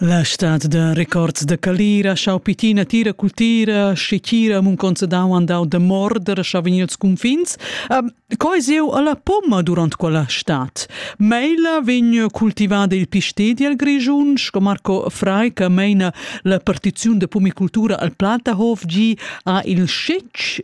La stad da records da calira, schau pitina tira cultira, schecira munconza dau andau da morder, schau vegnir als confins. Um, coi zeu alla pomma durant quella stad. Meila vegn cultivada il pistedi al Grischun, sco Marco Frei che meina la partiziun da pumicultura al Platahof gi ha il scetg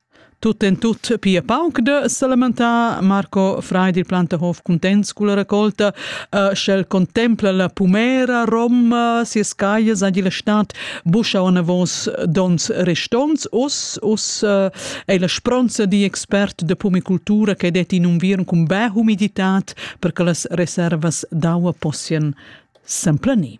Tut en tut pia pauc da salamentar. Marco Frei dil Plantahof cuntents culla raccolta, uh, sch'el contempla la pumera roma, sias caias agi la stad buscha anavos dons restonts. Us, us uh, è la spronza di expert de pumicultura che det in unviern cun beh humidità per che las reservas d'aua possian semplaner.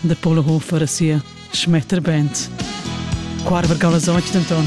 de Polehofer e sia Schmetterband. Qua vargava sontg denton.